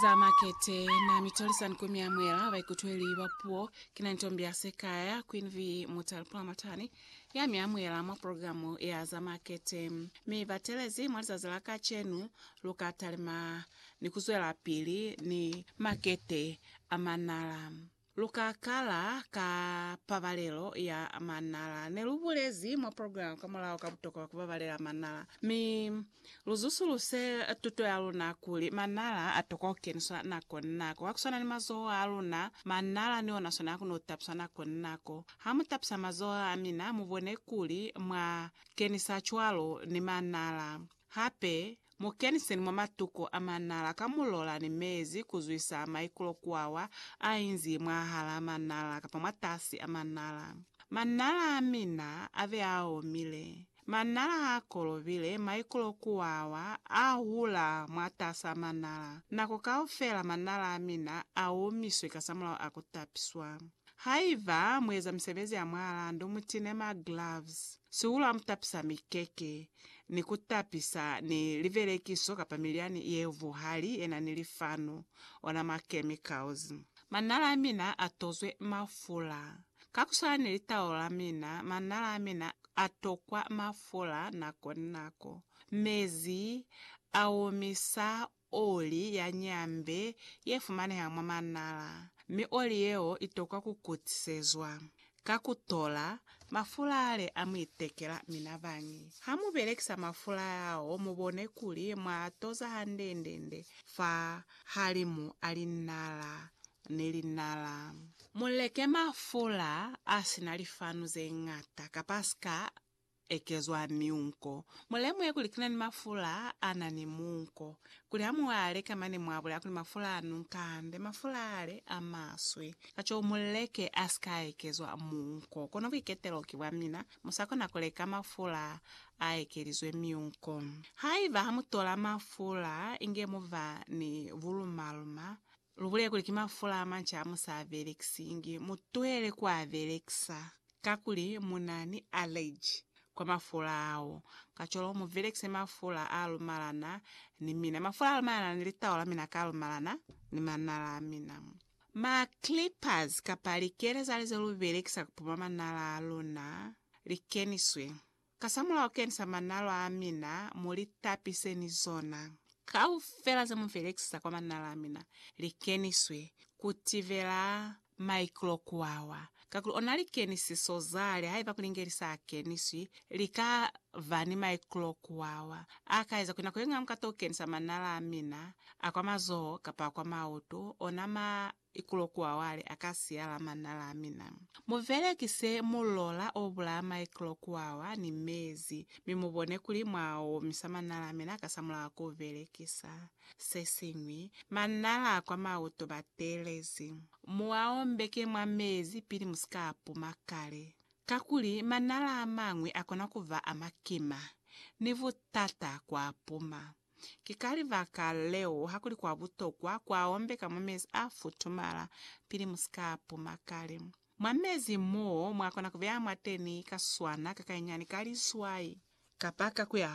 za makete na mitolisan ku miamwela baikutweli ba puo ki na ntombi ya sekaya Queen V Mutali Pulamatani ya miamwela mwa programu ya za makete mi batelezi mwa lizazi la kacenu luka talima ni kuzwela pili ni makete a manala. Lu ka kala ka pabalelo ya manala. Ne lu bulezi mwa programa ka mulaho ka butokwa bwa ku babalela manala. Mi lu zusuluse tuto ya luna kuli manala a tokwa ku keniswa nako ni nako. Ka ku swana ni mazoho a luna, manala ni ona swana a kono ku tapiswa nako ni nako. Ha mu tapisa mazoho a mina, mu bone kuli mwa kenisa cwalo ni manala. Hape, Mu keniseni mwa matuko a manala ka mulola ni mezi ku zwisa maikulo kuawa a inzi mwahalaa manala kapa mwatasi a manala. Manala a mina a be a omile. Manala ha a kolobile, maikulo kuawa a hula mwatasaa manala. Nako kaufela manala a mina a omiswe kasamulaho a ku tapiswa. Haiba mu eza misebezi ya mwahalaa ndu mu tine ma gloves. Sihulu ha mu tapisa mikeke. ni ku tapisa ni livelekiso kapa milyani ye vuhali ye na ni lifanu, ona ma chemicals. Manala a mina a tozwe mafula. Ka ku swana ni litaulo la mina, manala a mina a tokwa mafula nako ni nako. Mezi a omisa Oli ya nyambe ye fumaneha mwa manala, mi oli yeo i tokwa ku kutisezwa ka ku tola mafula ale a mu itekela. Mi na bañi ha mu belekisa mafula ao, mu bone kuli mwa a toza hande-nde-nde fa halimu a linala ni linala. Mu leke mafula a si na lifanu ze ñata kapa a si ka ekezwa miunko. Mulemuhe kuli kina ni mafula ana ni muunko, kuli hamuale ka mane muabulela kuli mafula a nunka hande, mafula ale a maswe. Kacwalo muleke asika ekezwa muunko. Kono buiketelo ki bwa mina, musakona kuleka mafula a ekelizwe miunko. Haiba hamutola mafula inge muba ni bulumaluma, Lu bulele kuli ki mafula a manca a mu sa a belekisingi. Mu tuhele ku a belekisa kakuli mu na ni aleji kwa mafula ao. Kacwalo mu belekise mafula a lumalana ni mina, mafula a lumalana ni litau la mina ka lumalana ni manala a mina. Ma clippers kapa likele za li ze lu belekisa ku puma manala a luna li keniswe. Kasamulaho kenisa manala a mina mo li tapise ni zona. Kaufela ze mu velekisa kwa manala a mina li keniswe ku tivela maiklokuawa, kakuli ona likenisiso za li haiba kuli ngeli sa keniswi li ka ba ni maiklokuawa a ka eza kuli nako ye ñwi ha mu ka to kenisa manala a mina a kwa mazoho kapa a kwa mautu, ona ma Ikulo kuawale a ka siya la manna la mina. Mu velekise mulola o bulaa maikulo kuawa ni mezi, mi mu bone kuli mwa omisa manna la mina kasamulaho ku velekisa se siñwi. Manna la kwa mauto ba telezi. Mu a ombeke mwa mezi pili mu si ka a puma kale. Kakuli manna la a mañwi a kona ku ba a makima, ni butata ku a puma. Ki ka libaka leo hakuli kwa butokwa ku aombeka mwa mezi a futumala pili mu si ka puma kale. Mwa mezi mo mwa kona ku beya mwateni ka swana ka kainyani ka liswai, kapa ka ku ya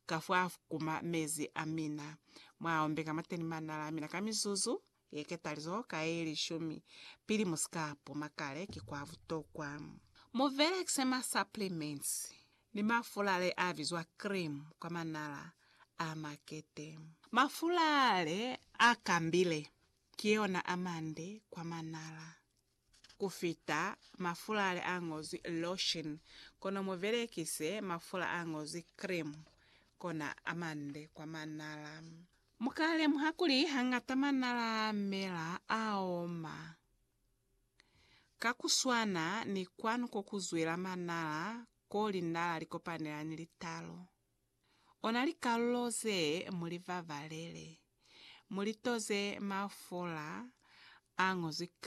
ka fwa kuma mezi a mina, mwa aombeka mwateni manala a mina ka mizuzu Ye ketalizo ka ye lishumi pili mu si ka puma kale ki kwa butokwa. Mu belekise ma supplements ni mafula le a bizwa cream kwa manala a makete. Mafula le a kambile ki yona a mande kwa manala. ku fita mafula ale a ñozwi lotion, kono mu belekise mafula a ñozwi cream, kona a mande kwa manala. Mu ka lemuha kuli hañata manala a mela a oma. Ka ku swana ni kwanu ko ku zwela manala ko linala li kopanela ni litalo, ona likalulo ze mu li vavalele, mu li toze mafula a ñozwi